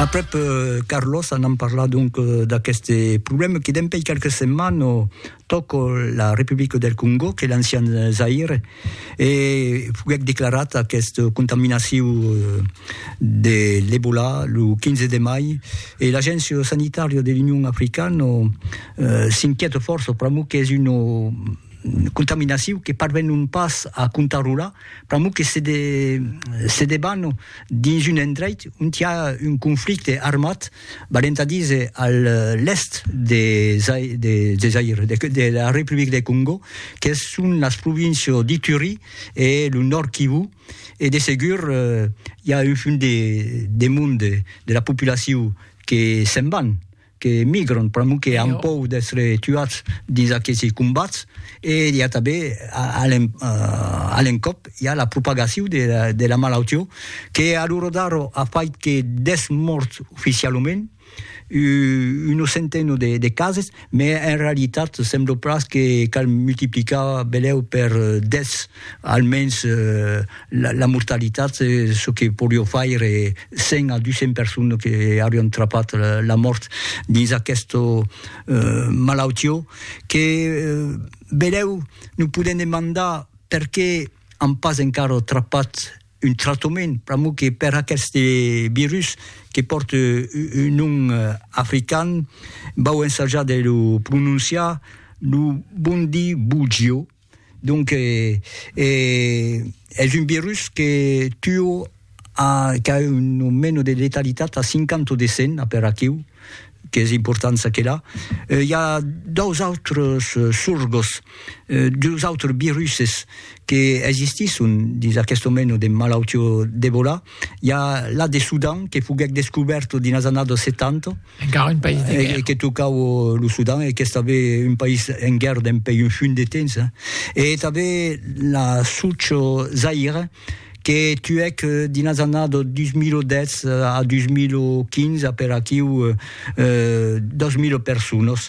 Aprèp Carlos anam parlar donc d'aqueste problème que dempèi quelques setmanes tòc la Republica del Congo, que l'ancian Zaïre, e foguèc declarat aquest contaminacion de l'Ebola lo 15 de mai, e l'Agéncia Sanitària de l'Union Africana s'inquiète fòrça pr'amor qu'es una contaminacion que parvenon pas a contarrolar, pr'amor que se de se deban dins un endreit ont i a un conflicte armat, valent a díser a l'èst de Zai de de Zaïre, de de la Republic de Còngo, que son las províncias d'Ituri e lo Nòrd Kivu, e de segur i a un fum de de monde de la populacion que se'n van que emigran pr'amor que an pòur d'èstre tuats dins aquesi combats e i a tanben a l'encòp i a la propagacion de la malautió que a l'ora d'ara a fait que 10 mòrts oficialament una centena de cases, mès en realitat sembla pas que cal multiplicar belèu per 10 almens la mortalitat, çò que porió faire 100 a 200 personnes que aurián trapat la mòrt dins aquesta malautió, que benlèu nos podèm demandar perqué an pas encara trapat un tractament, pr'amor que per aqueste virus que pòrt un nom african, vau ensajar de lo prononciar, lo bondibugio. Donc es un virus que tuo qu'a un nomeno de letalitat a 50 o de 100 per aquiu qu'es important saquela. I a dos autres sorgos, dus autres viruses que existisson dins aqueste nomeno de malautió d'Ebola. I a la de Sudan que foguèc descubèrto dins las annadas 70, Encara un país de guèrra. E que tocau lo Sudan e qu'es tanben un país en guèrra dempèi un funt de temps. E tanben la soc Zaïre que tuèc dins las annadas 2010 a 2015 aper aquiu 2.000 personas,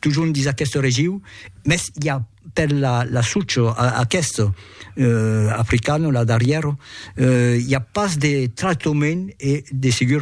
totjorn dins aquesta regiu, mès i a per la soc aquesta africana, la darrièra, i a pas de tractament e de segur